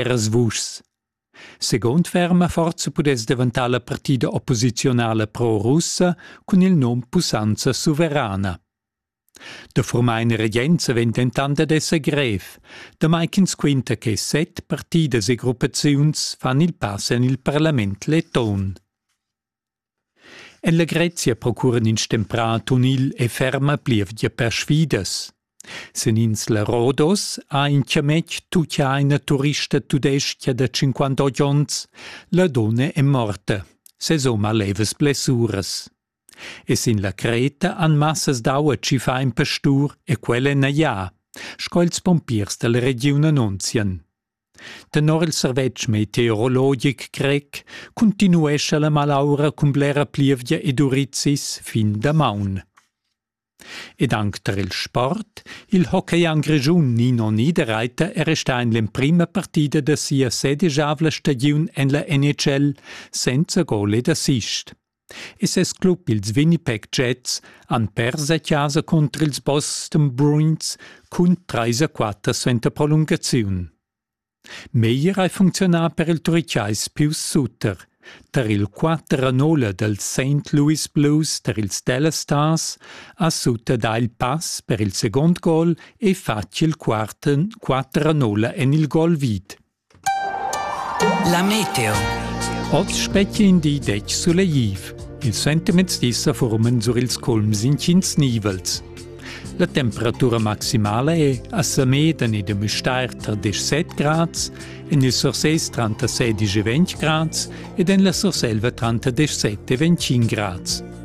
Eras vuschs. Segund ferma forza pudess daventar la partida opposiziunala pro-russa cun il nom Pussanza suverana. Da formar in regenza vegn dentant ad esser grev, damai ch'ins quinta che set partidas e gruppaziuns fan il pass en il parlament leton. En la Grezia procuran ins stemprà tunil e ferma plievgia perschidas. Sin ins la Rodos ha in chametg tucchà ina turista tudestga da 58 onns. La donna è morta, sesom ha levas blessuras. E sin la Creta han massas d'aua tschiffà in pastur e quella è naglià, sco ils pompiers dalla regiun annunzian. Tenor il servetsch meteorologic grec cuntinuescha la malaura cun blera plievgia ed urizis fin damaun. Ed anc tar il sport, il hockeyam grischun Nino Niederreiter è restà en l'emprima partida da sia sedesavla stagiun en la NHL senza gol ed assist. e ses club ils Winnipeg Jets han pers a chasa cunter ils Boston Bruins cun trais a quatter suenter prolungaziun. Meglier hai funcziunà per il Turichais Pius Suter. Tar il 4 a 0 dals St. Louis Blues tar ils Dallas Stars ha Suter dà il pass per il segund gol e fatg il quart 4 a 0 en il gol vid. La meteo. Oz spetga in di detg sulegliv. Ils sentiments dis sa forman sur ils culms intgins nivels. La temperatura maximala è a Sameden e de Müstair tar 17 grads, en il Sursés tranter 16 e 20 grads ed en la Surselva tranter 17 e 21 grads.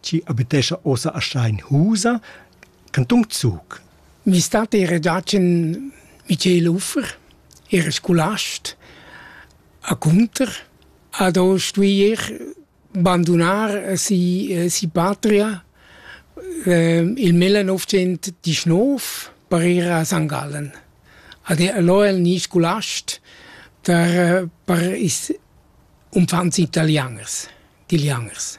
chi abitescha ossa a Steinhusa, Canton Zug. Mi stat era giacen Michel Uffer, era scolast, a Cunter, ad ho stuier bandonar si, si patria ehm, il 1919 per ir a St. Gallen. Ad lo el ni scolast per, per is umfants italianers, italianers.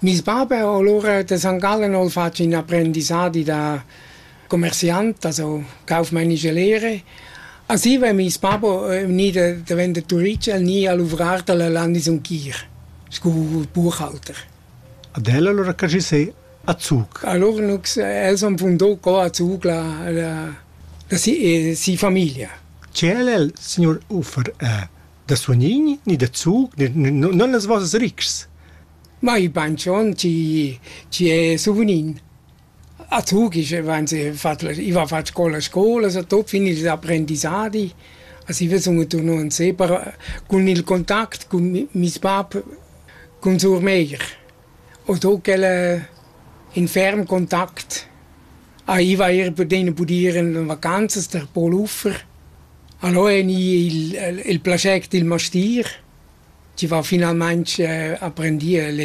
Meis bab ha alura da San Gallen ho'l fat ün aprendissadi da commerciant, also cauf maine gelere. A Siva è meis bab gnü da daventar turist, el gnü a luvrar da la Landesumkir scu buchhalter. Ad el alura che schi sè a Zug? Allura nu els han fundà co a Zug la, la, la si, si famiglia. Che el el, signor Uffer, Da suonign ni da zug non las vossas ritgs. Mai banchon chi chi è souvenin. A zug ich i va fat scola scola, so tot fin ils apprendissadi. As i vezun turno in separa cun il contact cun mis bab, cun sur meir. ho do quel in ferm contact. Aiva eir pudena budir in vacanzas der Paul Uffer. Allò eni il il plascher d'il mastier, chi va finalmaing aprendir a legner.